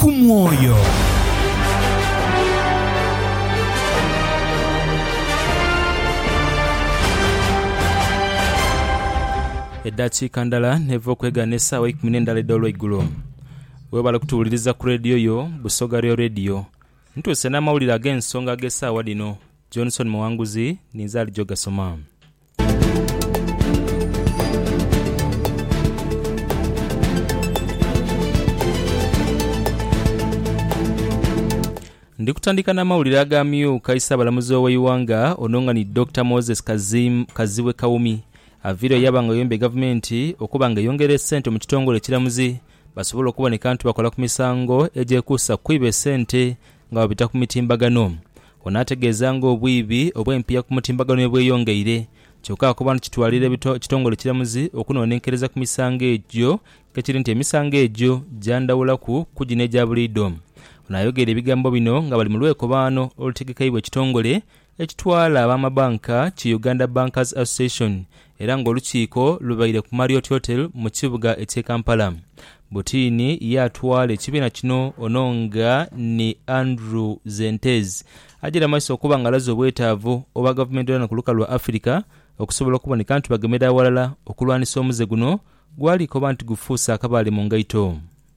ku mwoyo. Eddakiika ndala n'eva okwegaana esaawa eikumi n'endala edh'olweigulo. Webale kutuwuliriza ku leediyo yo Busoga Real Radio. Ntuuse n'amawulire ag'ensonga ag'esaawa dhino. Johnson Muwanguzi ninze ali gyogasoma. Ndi kutandika n'amawulire ag'amyuka Isaabalamuzi ow'eighanga ono nga ni Dokita Moses Kazim, Kazibwe Kawumi aviire oyo yaba nga ayombye Gavumenti okuba nga eyongera esente mu kitongole ekiramuzi basobole okuboneka nti bakola ku misango egyekuusa ku kwiba esente nga babita ku mitimbagano. Ono ategeeza nga obwiibi obw'empiiya ku mutimbagano bwebweyongeire kyoka akoba nti kitwalira ekitongole ekiramuzi okunonenkereza ku misango egyo kekiri nti emisango egyo gyandhawulaku ku gino egya buliidho. Ono ayogeire ebigambo bino nga bali mu lwekobaano olutegekeibwa ekitongole ekitwala abamabanka ki Uganda Bankers Association Era ng'olukiiko lubaire ku Marriot Hotel mu kibuga eky'e Kampala, Butiini ye atwala ekibiina kino ono nga ni Andrew Zentez ajaire amaiso okuba nga alaze obwetaavu obwa gavumenti dhona ku lukalu lwa Afirika okusobola okuboneka nti bagemera aghalala okulwanisa omuze guno gwali koba nti gufuuse akabaale mu ngaito.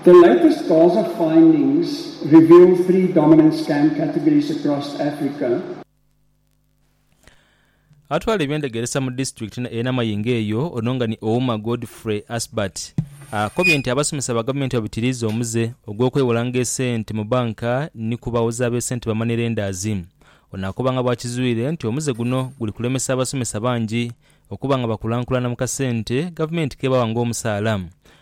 The latest CASA findings reveal three dominant scam categories across Africa. Atwala eby'endegeresa mu disitulikiti eye Namayingo eyo ono nga ni Ouma Godfrey Asbert akobye nti abasomesa ba gavumenti babitiriiza omuze ogw'okwewolanga esente mu banka ni ku bawozi ab'esente ba money lenders. Ono akoba nga bwakizwire nti omuze guno guli kulemesa abasomesa bangi okuba nga bakulankulana mu kasente gavumenti kebawa ng'omusaala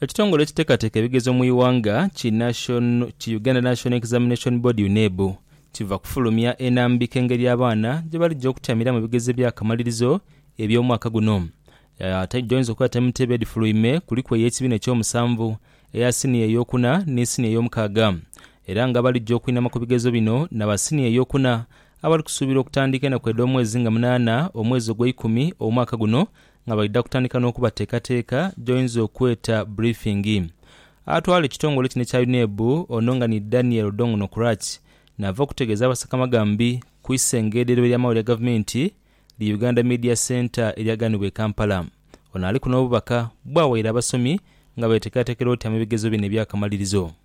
Ekitongole ekitekateka ebigezo mu ighanga ki Uganda National Examination Board, UNEB, kiva kufulumya enambika engeri abaana gyebalija okutyamira mu bigezo ebya kamalirizo eby'omwaka guno. Agyoinza okuba taimutebo edhifuluime kuliku ey'ekibiina eky'omusanvu, eya siniya ey'okuna ni siniya ey'omukaaga era nga abalija okwinama ku bigezo bino na ba siniya ey'okuna abali kusuubirwa okutandika enaku edh'omwezi nga munaana omwezi ogweikumi omwaka guno nga baidha kutandika n'okubateekateeka gy'oyinza okweta brifingi. Atwala ekitongole kino ekya UNEB ono nga ni Daniel Odong Nokrach naava okutegeeza Abasakamaghambi ku isengedhero ery'amawulire ga gavumenti li Uganda Media Centre eryagaanibwa e Kampala. Ono aliku n'obubaka bwawaire abasomi nga beeteekateekera otyama ebigezo bino ebyakamalirizo.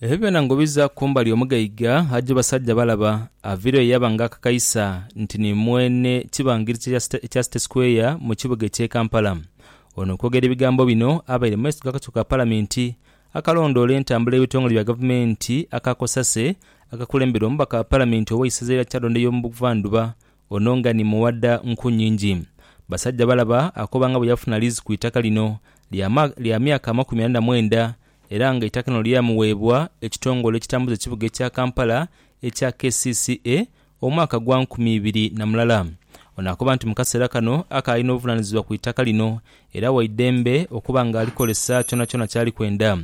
Ebyo byona ngobiza kumbali omugaiga aja basajja balaba avire yo yaba nga akakaisa nti ni mwene kibangirizi ekya City Square mu kibuga ekye Kampala. Ono okwogera ebigambo bino abaire mu maiso g'akakiiko ka Palamenti akalondoola entambula y'ebitongole bya Gavumenti aka cosase akakulemberwa omubaka wa Palamenti ow'eisaza lya Kyadonda ey'omu Buvandhuba Ono nga ni muwadha nku nyingi. Basajjabalaba akoba nga bwe yafuna liizi ku itaka lino lya lya myaka amakumi ana na mwenda era nga eitaka lino lyamuweebwa ekitongole ekitambuza ekibuga ekya Kampala ekya kcca omwaka gwa nkumi ibiri na mulala. Ono akoba nti mu kaseera kano akaali n'obuvunaanyizibwa ku itaka lino era waidembe okuba nga alikozesa kyonakyona kyali kwenda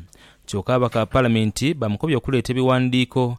kyoka abaka Palamenti bamukobye okuleeta ebiwandiiko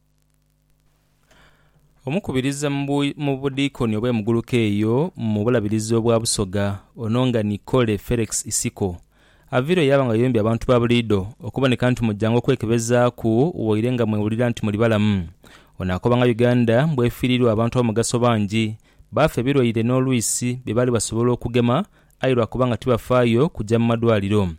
Omukubiriza mu budiikoni obw'emuguluka eyo mu Bulabirizi obwa Busoga, ono nga ni Kole Ferex Isiko, aviirwa yaaba nga yombya abantu ba buliidho okuboneka nti mujanga okwekebezaaku waire nga mwewulira nti muli balamu. Ono akoba nga Uganda bw'efiiriirwa abantu ab'omugaso bangi, baafa ebilwaire n'olwisi bye baali basobola okugema aye lwa kuba nga tibafaayo kuja mu madwaliro.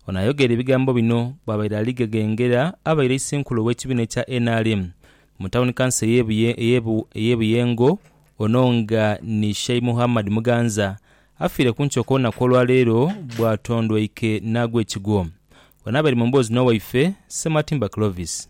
Ono ayogera ebigambo bino bwabaire ali ghegengera abaire eisenkulu ow'ekibiina ekya nrm mu tawuni kanso ey'e Buyengo ono nga ni Shei Muhammad Muganza afiire ku nkyo kw'olunaku olwaleero bwatondweike n'agwa ekigwo. Ono abaire mu mboozi n'owaife Sematimba Clovis.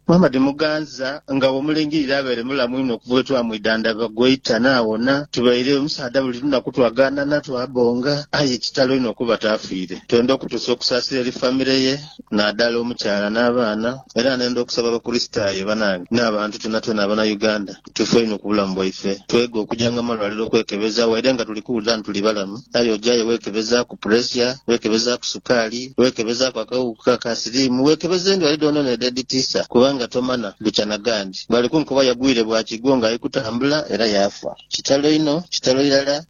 Muhammad Muganza, Nga bwomulengirira abaire mulamu inho okuva lwetwamwidhandha bwagwaita naawona. Tubaire omusaadha buli lunaku twagaanana, twabonga aye kitalo inho okuba taafiire. Twenda okutuusa okusaasira eri famire ye naadala omukyala n'abaana era nenda okusaba Abakurisitaayo banange n'abantu twonatwona abana Uganda. kitufu einho ku bulamu bwaife. Twega okuja nga malwaliro okwekebeza waire nga tuli kuwulira nti tuli balamu. Aye ojayo wekebezaku puresia, wekebezaku sukaali, wekebezaku akawuuka ka siriimu, weekebeza endwari dhoonadhoona edhedhitiisa kubanga tomana bukya na ghaandi. Bali kunkoba yagwire bwa kigwo nga ali kutambula era yaafa. Kitalo inho, kitalo irala.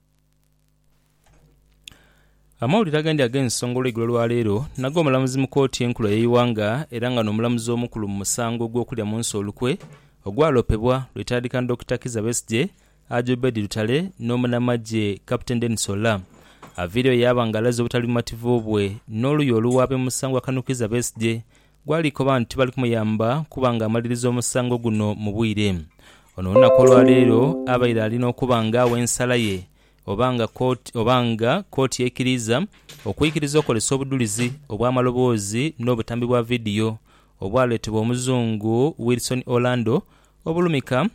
Amawulire agandi ag'ensonga olweigulo lwa leero nago omulamuzi mu kooti enkulu ey'eighanga era nga n'omulamuzi omukulu mu musango ogw'okulya mu nsi olukwe ogwalopebwa lwetandika ni Dokita Kizza Besigye, Haji Obed Lutale n'omunamagye Captain Denis Ollah aviireyo yaaba nga alaze obutali bumativu bwe n'oluuyi oluwaabi mu musango gwa Kano Kizza Besigye gwali koba nti tibali kumuyamba kuba nga amaliriza omusango guno mu bwire. Ono olunaku olwaleero abaire ali n'okuba nga agha ensala ye oba nga kooti oba nga kooti eikiriiza okwikiriza okozesa obudhulizi obw'amaloboozi n'obutambi bwa vidiyo obwaleetebwa Omuzungu Wilson Orlando obulumika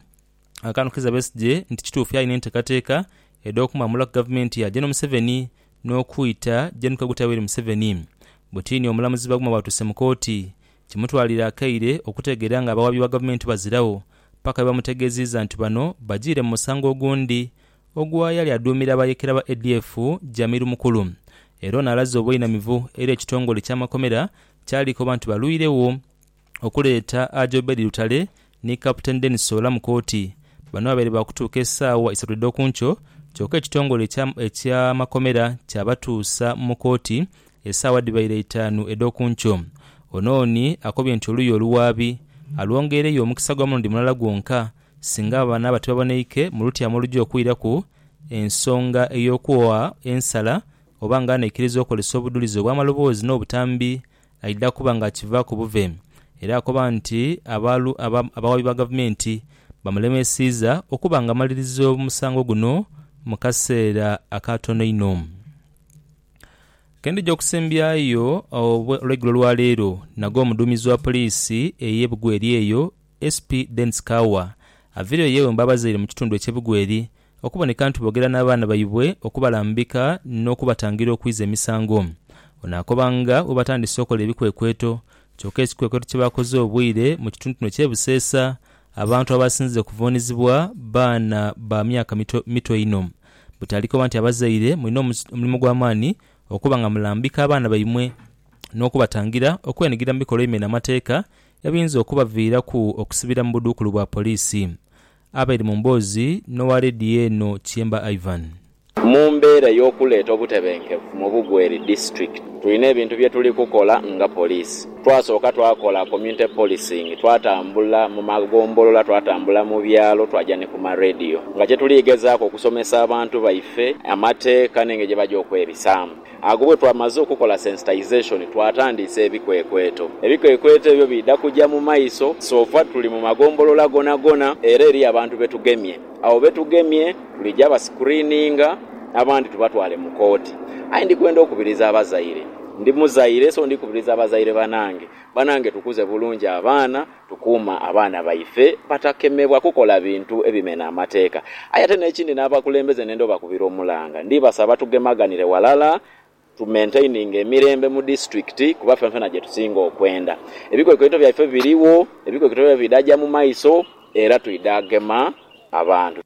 akantu Kizza Besigye nti kituufu yalina entekateeka edh'okumwamulaku gavumenti ya Gen Museveni n'okwita Gen Kaguta Yoweri Museveni. Butini omulamuzi Baguma bwatuuse mu kooti, kimutwalira akaire okutegeera ng'abawabi ba gavumenti baziragho paka bwebamutegeeziiza nti bano bajiire mu musango ogundi ogwayali aduumira abayeekera ba ADF Jamil Mukulu era ono alaze obweinamivu eri ekitongole ky'amakomera kyali koba nti balwiregho okuleeta Aj Obedi Lutale ni Captain Denis Oola mu kooti bano babaire baakutuuka esaawa isatu edhokunkyo kyoka ekitongole eky'amakomera kyabatuusa mu kooti esaawa dhibaire itaanu edhokunkyo Ono oni akobye nti oluuyi oluwaabi alwongeereyo omukisa gwa mulundi mulala gwonka Singa abaana abo tibaboneike mu lutyaamo olugya okwiraku, ensonga ey'okugha ensala oba nga anaikiriza okozesa obudhulizi obw'amaloboozi n'obutambi aidha kuba nga akivaaku buve. Era akoba nti abaalu aba abawaabi ba gavumenti bamulemesiiza okuba nga amaliriza omusango guno mu kaseera akatono inho. Kendhija okusembyayo olweigulo lwa leero nago omuduumizi wa poliisi ey'e Bugweri eyo, SP Dennis Kaua aviireyo yeewemba abazaire mu kitundu ekye Bugweri okuboneka nti boogera n'abaana baibwe okubalambika n'okubatangira okwiza emisango. Ono akoba nga bwebatandise okola ebikwekweto kyoka ekikwekweto kyebakoze obwire mu kitundu kino ekye Buseesa abantu abasinze okuvuunizibwa baana ba myaka mito mito inho. But alikoba nti abazaire mulina omulimo gwamaani okuba nga mulambika abaana baimwe n'okubatangira okwenhigira mu bikolwa ebimena amateeka ebiyinza okubaviiraku okusibira mu budhuukulu bwa poliisi. Abaire mu mboozi n'owa leediyo eno Kyemba Ivan. Mu mbeera ey'okuleeta obutebenkevu mu Bugweri District, tulina ebintu bye tuli kukola nga poliisi. Twasooka twakola community policing, twatambula mu magombolola, twatambula mu byalo, twaja ni ku ma leediyo nga kye tuli gezaaku okusomesa abantu baife amateeka n'engeri gye baja okwebisaamu. Agho bwe twamaze okukola sensitization twatandiisa ebikwekweto. Ebikwekweto ebyo biidha kuja mu maiso so far tuli mu magombolola gonagona era eriyo abantu be tugemye. Abo be tugemye tuliija ba screeninga abandi tubatwale mu kooti. Aye ndi kwenda okubiriza abazaire, ndi muzaire so ndi kubiriza abazaire banange, banange tukuze bulungi abaana Tukuuma abaana baife batakemebwa kukola bintu ebimena amateeka. Aye ate n'ekindi n'abakulembeze nenda obakubira omulanga. Ndibasaba tugemaganire walala tu maintaininge emirembe mu disitulikiti kuba fenfena gye tusinga okwenda. Ebikwekweto byaife birigho, ebikwekweto byaibwe bidha gya mu maiso era twidha gema abantu.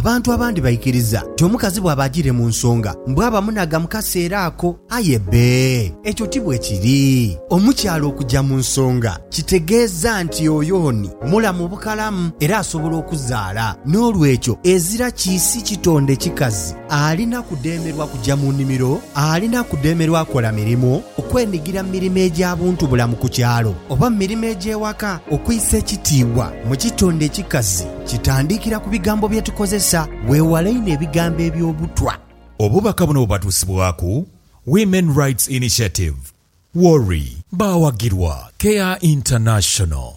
Abantu abandi baikiriza nti omukazi bwaba ajiire mu nsonga mbu aba munhaga mu kaseera ako. Aye bbe, ekyo ti bwe kiri. Omukyala okuja mu nsonga kitegeeza nti oyo ni mulamu bukalamu era asobola okuzaala. N'olwekyo ezira kiisi kitonde kikazi. Alina kudheemerwa kuja mu nimiro, alina kudheemerwa kola mirimu, okwenigira mu mirimo egya buntubulamu ku kyalo oba mu mirimo egy'ewaka. Okwisa ekitiibwa mu kitonde ekikazi kitandikira ku bigambo bye tukozesa. Weewale inho ebigambo eby'obutwa. Obubaka buno bubatuusibwaku Women Rights Initiative, WORI. Baawagirwa Care International.